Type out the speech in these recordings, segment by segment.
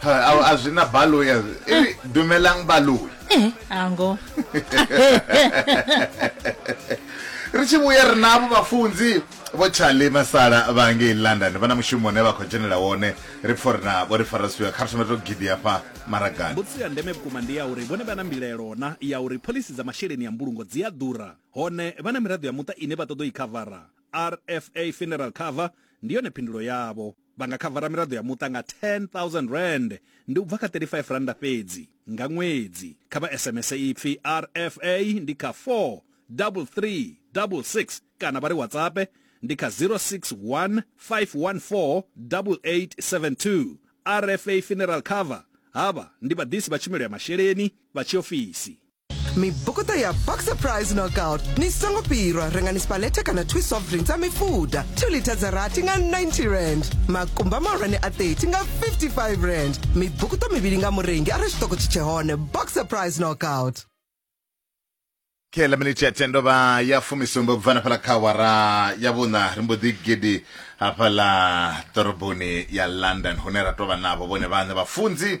Ha, a zwi na baloi a zwi- e ri dumelang baloi Eh, ango ri tshi vhuya ri navho vhafunzi vho charlie masala vha ngei london vha na mushumo une vha khou dzhenela wone ri pfo ri navho ri farasiwa kha ri thome to gidi hafha maragani mbudziso ya ndeme vhukuma ndi ya uri vhone vha na mbilaelo na ya uri phoḽisi dza masheleni ya mbulungo dzi a ḓura hone vha na miraḓo ya muṱa ine vha ṱoḓa u i khavara rfa funeral cover ndi yone phindulo yavho Vha nga khavara miraḓo ya muṱa nga R10,000, ndi u bva kha R35 fhedzi, nga ṅwedzi. Kha vha SMS ipfi RFA ndi kha 43366 kana vha ri WhatsAppe ndi kha 061 514 8872. RFA Funeral Cover, Havha ndi vhaḓisi vha tshumelo ya masheleni vha tshiofisi. mibokoto ya boxer price knockout ni songo pirwa rengani spalete kana two soft drinks a mifuda 2 lita dza rathi nga 90 rand makumba mahulwane a 30 nga 55 rand mibukuto mivhili nga murengi arali tshiṱoko tshi tshe hone boxer price knockout khela miniti ya tendo vha ya fumisumbe ubva na fhala kha wara ya vhuṋa ri mbo ḓi gidi hafhaḽa ḓoroboni ya london hune ra tovha navho vhone vhaṋe vhafunzi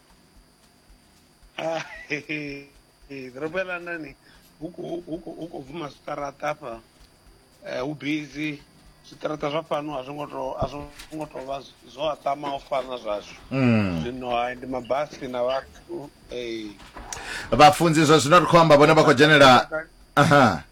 Ah, ḓorobo ya london hu khou- hu khou- hu khou bvuma zwiṱaraṱa afha Eh, hu busy zwiṱaraṱa zwa fhano a zwo ngo to a zwo ngo to vha zw- zwo aṱama u fana zwashu Mm. zwino hai ndi mabasi na vhathu eh. vhafunzi zwa zwino ri khou amba vhone vha khou dzhenela aha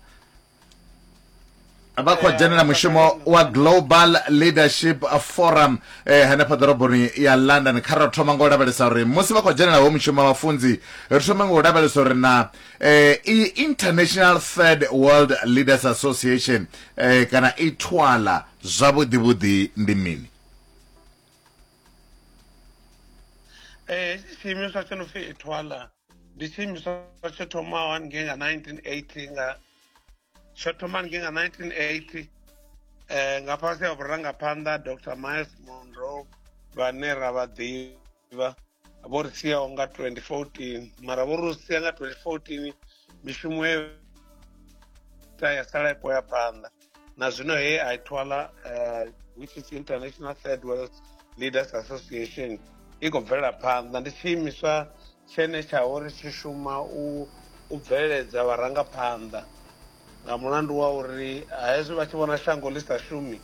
vha khou dzhenela mushumo wa global leadership forum eh, hanefha ḓoroboni ya london kha ra thoma nga u lavhelesa uri musi vha khou dzhenela ho mushumo wa vhafunzi ri thoma nga u lavhelesa uri na eh, i international third world leaders association eh, kana i twala zwavhuḓivhuḓi ndi mini eh, tshiimiswa tsho no pfi itwala ndi tshiimiswa tsho thomaho haningei nga 1980 nga tsho thoma haningei nga 1980 eh nga fhasi ha vhurangaphanḓa dr miles monro vhane ra vha ḓivha vho ri siaho nga 2014 mara vho ri sia nga 2014 mishumo ye ta ya sala i khou ya phanḓa na zwino he a thwala uh, which is international third world leaders association i khou bvela phanḓa ndi tshiimiswa tshene tsha uri tshi shuma u u bveledza vharangaphanḓa nga mulandu wa uri hezwi vha tshi vhona shango ḽi sa shumi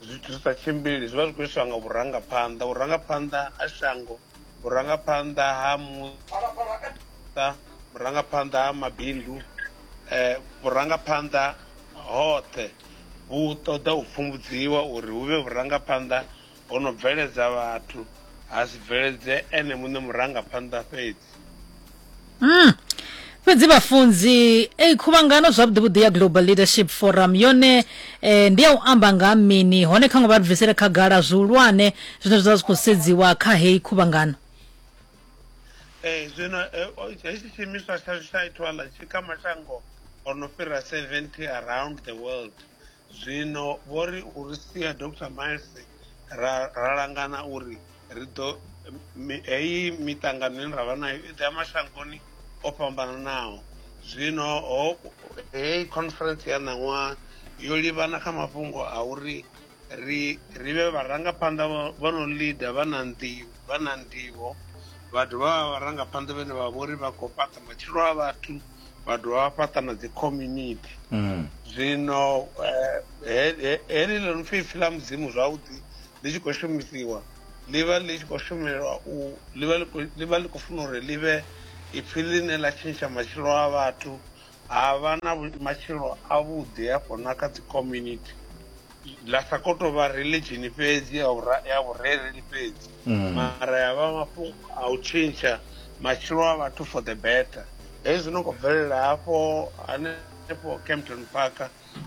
zwithu zwi sa tshimbili zwi vha zwi khou iswa nga vhurangaphanḓa vhurangaphanḓa ha shango vhurangaphanḓa ha muṱa vhurangaphanḓa ha mabindu um vhurangaphanḓa hoṱhe vhu ṱoḓa u pfumbudziwa uri hu vhe vhurangaphanḓa ho no bveledza vhathu ha si bveledze ene muṋe murangaphanḓa fhedzi mm. fhedzi vhafunzi ei khuvhangano zwavhuḓivhuḓi ya global leadership forum yone eh, ndi ya u amba nga ha mini hone kha ngo vha ri bvisele khagala zwihulwane zwine zwa zwi khou sedziwa kha heyi khuvhangano ee eh, zwino eh, hetshi tshiimiswa tsha tsha itwala tshi kha mashango o no fhira 70 around the world Zwino vho ri u ri sia Dr Miles ra, ra langana uri ri ḓo heyi miṱangano ine ra vha nayo i ḓo ya mashangoni o fhambananaho zwino ho heyi conference ya ṋaṅwaha yo livhana kha mafhungo a uri ri ri vhe vharangaphanḓa vho no lida vha na nḓivho vha na nḓivho vha dovha vha vharangaphanḓa vhene vha vhori vha khou fhaṱa matshilo a vhathu vha dovha vha fhaṱa na dzi community mm. zwino eh, heḽi ḽo no pfhi ipfi ḽa mudzimu zwavhuḓi ḽi tshi khou shumisiwa ḽi vha ḽi tshi khou shumelwa u ḽi vha ḽi khou funa uri ḽi vhe ipfi ḽine ḽa tshintsha matshilo a vhathu ha vha na matshilo avhuḓi hafho na kha dzi community ḽa sa khou tou vha religion fhedzi ya vhura- ya vhurereli fhedzi Mm. mara ya vha mafhungo a u tshintsha matshilo a vhathu for the better hezwi no khou bvelela hafho hanefho campton park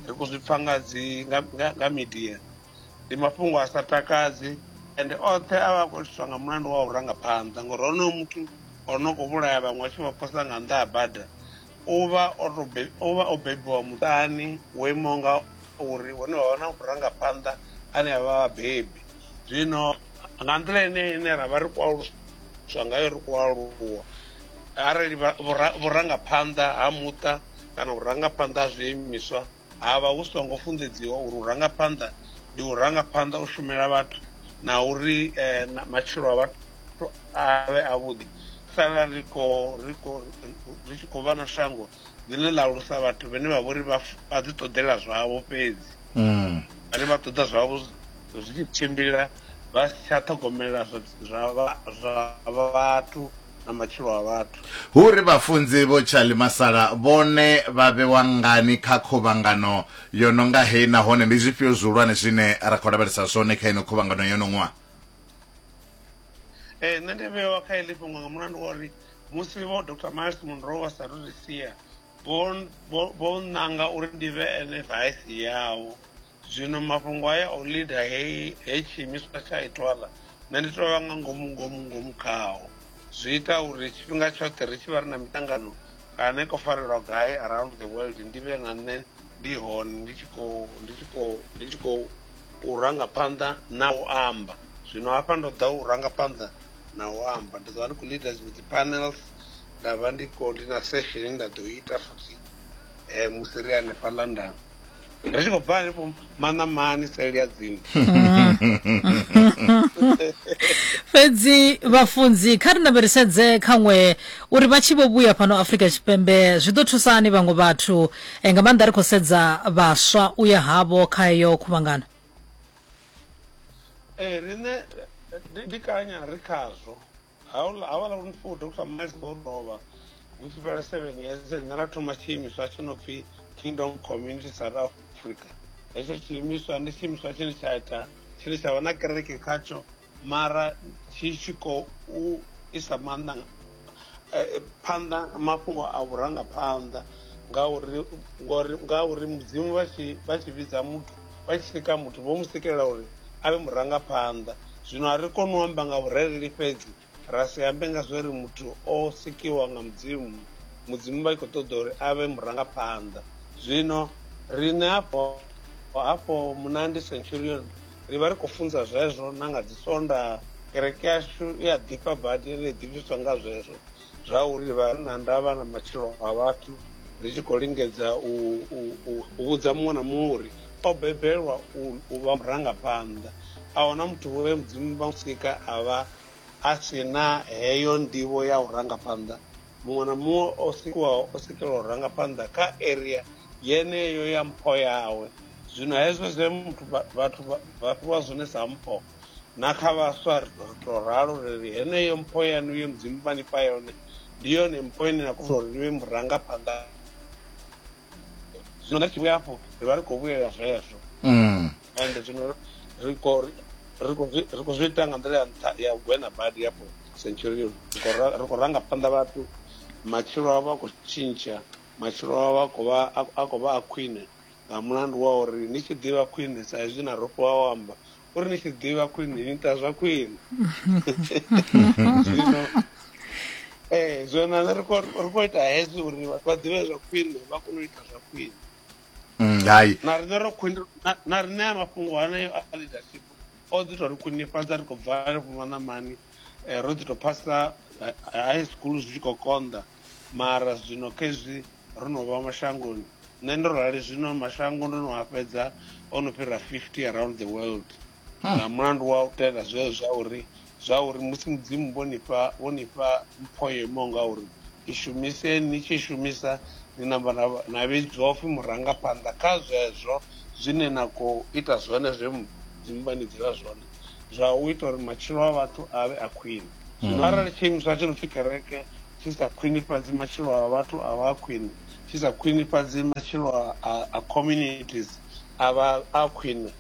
ri khou zwi pfa nga dzi nga- nga nga media ndi mafhungo a sa takadzi and oṱhe a vha a khou itiswa nga mulandu wa u rangaphanḓa ngori honoyo muthu o no khou vhulaya vhaṅwe a tshi vha posa nga nnḓa ha bada U vha o to be, u vha o bebiwa muṱani wo imaho nga uri hune vha vha na vhurangaphanḓa ane a vha vhabebi zwino nga nḓila ine ine ra vha ri khou aluswa ngayo ri khou aluwa arali vhurangaphanḓa ha muṱa kana vhurangaphanḓa ha zwiimiswa ha vha hu songo funḓedziwa uri u ranga phanḓa ndi u ranga phanḓa u shumela vhathu na uri eh, matshilo a vhathu avhe avhuḓi sala ri tshi khou vha na shango ḽine ḽa alusa vhathu vhane vha vhori vha ḓi ṱoḓela zwavho fhedzi mm. vhane vha ṱoḓa zwavho zwi tshi tshimbila vha si tsha ṱhogomela zwa vhathu na matshilo a vhathu. Hu ri vhafunzi vho Charlie Masala vhone vha vhewa ngani kha khuvhangano yo no nga heyi nahone ndi zwifhio zwihulwane zwine ra khou lavhelesa zwone kha ino khuvhangano yo no ṅwa? Ee, nṋe ndi vhewa kha heḽi fhungo nga mulandu wa uri musi vho Dr Miles Munroe vha sa ri ri sia vho nnanga uri ndi vhe ene vaisi yavho. Zwino mafhungo haya a u lida he, he tshiimiswa tsha itwala, nṋe ndi tou vha nga ngomu ngomu ngomu khao. Zwi ita uri tshifhinga tshoṱhe ri tshi vha ri na miṱangano kana ko farelwa gai around the world ndi vhe nga nṋe ndi hone ndi tshi khou ndi tshi khou ndi tshi khou u ranga phanḓa na u amba. Zwino hafha ndo ḓa u ranga phanḓa na u amba, ndi ḓo vha ndi khou leader dziṅwe dzi panels, nda vha ndi khou ndi na session nda ḓo ita futhi um musi ri hanefha London. ri tshi khou bva ri vho maṋamani seli ya dzimu fhedzi vhafunzi kha ri lavherisedze khaṅwe uri vha tshi vho vhuya fhano afrika tshipembe zwi ḓo thusa hani vhaṅwe vhathu eh, nga maanḓa ri khou sedza vhaswa u ya havho kha heyo khuvhangano ee riṋe ndi- ndi kanya ri khazwo haula havala uri ndipfo dr miles vho lovha hu tshi fhela seven years nṋe ra thoma tshiimiswa tshi no pfi kingdom community south africa hetsho tshiimiswa ndi tshiimiswa tshine tsha ita tshine tsha vha na kereke khatsho mara tshi tshi khou isa maanḓa eh, phanḓa mafhungo a vhurangaphanḓa ngauri ngauri mudzimu vha tshi vha tshi vhidza muthu vha tshi sika muthu vho mu sikela uri a vhe murangaphanḓa zwino a ri koni u amba nga vhurereli fhedzi ra si ambe nga zwe ri muthu o sikiwa nga mudzimu mudzimu vha tshi khou ṱoḓa uri a vhe murangaphanḓa zwino riṋe hafho hafho munandi centurion ri vha ri khou funza zwezwo na nga dzi sonda kereke yashu i a ḓifha badi ri ḓifhiswa nga zwezwo zwa uri vha na ndavha na matshilo a vhathu ri tshi khou lingedza u vhudza muṅwe na muṅwe uri o bebelwa u vha murangaphanḓa a huna muthu vhoe mudzimu vha musika a vha a si na heyo ndivho ya u rangaphanḓa muṅwe na muṅwe o sikiwaho o sikelwa u rangaphanḓa kha area yeneyo ya mpho yawe zwino hezwo zwe muthu vhathu vha fhiwa zwone sa mpho Na kha vhaswa ri ḓo tou ralo ri ri heneyo mpho yaṋu ye mudzimu vha ni fha yone ndi yone mpho ine na kona uri ni vhe murangaphanḓa zwino nga tshivhuya afho ri vha ri khou vhuyelela zwezwo mm. ende zwino ri khou zwi ita nga nḓila ya nṱha ya gwena badi yafho centurion ri khou ranga phanḓa vhathu matshilo avho a khou tshintsha matshilo avho a khou vha a khwine Nga mulandu wa uri ni tshi ḓivha khwine, sa izwi na rofhiwa o amba uri ni tshi ḓivha khwine ni ita zwa khwine. Zwino ee zwino na nṋe ri khou ri khou ita hezwi uri vhathu vha ḓivhe zwa khwine vha kone u ita zwa khwine. Mm, hai Na riṋe ro khwine na- na riṋe a mafhungo haneyo a leadership o ḓi tou ri khwinifhadza ri khou bva henefho maṋamani eh, ro ḓi tou phasa eh, high school zwi tshi khou konḓa mara zwino khezwi ro no vha mashangoni. Nṋe ndo rali zwino mashango ndo no a fhedza o no fhira 50 around the world nga mulandu wa u tenda zwezwo zwa uri zwa uri musi mudzimu vho ni fha vho ni fha mpho yo imaho nga uri i shumiseni ni tshi i shumisa ni namba na vha- na vhidzwa upfhi murangaphanḓa kha zwezwo zwine na khou ita zwone zwe mudzimu vha ni dzela zwone zwa u ita uri matshilo a vhathu a vhe a khwine zwino arali tshiimiswa tshi no pfi kereke tshi sa khwinifhadzi matshilo a vhathu a vha khwine, tshi sa khwinifhadzi matshilo a a communities a vha a khwine,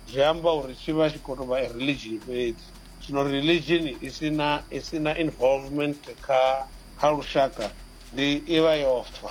zwi amba uri tshi vha tshi khou tou vha a religion fhedzi. Zwino religion i si na i si na involvement kha kha lushaka ndi i vha yo fa.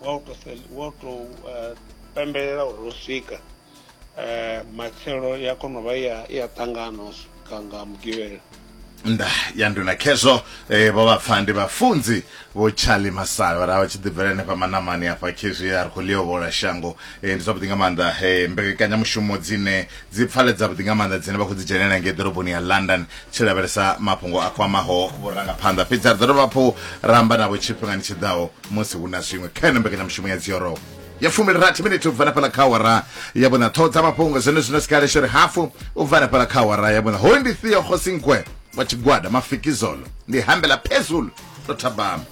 wa u to wa u to eh, pembelela uri ro swika eh, matshelo ya kona u vha ya ya ṱangana u swika nga mugivhela nda ya nduna khezwo eh, vho vhapfa ndi vhafunzi vho charlie masale vha ra vha tshi ḓibvela henefha manamani afha khezwi a ri khou liovhola shango eh, ndi zwavhuḓi nga maanḓa eh, mbekanyamushumo dzine dzi pfaledza vhuḓi nga maanḓa dzine vha khou dzi dzhenelela ngei ḓoroboni ya london tshi lavhelesa mafhungo a kwamaho vhurangaphanḓa fhedzi a ri ḓo dovha hafhu ra amba navho tshifhingani tshi ḓaho musi hu na zwiṅwe kha yone mbekanyamushumo ya dzioro ya fumbilirathi miniti u bva na fhala kha awara ya vhuna ṱhoho dza mafhungo zwone zwino sikaleshori hafu u bva na fhala kha awara ya vhuna hoyu ndi theo khosinkwe wa tshigwada mafikizolo ndi hambela phezulu ndo thabama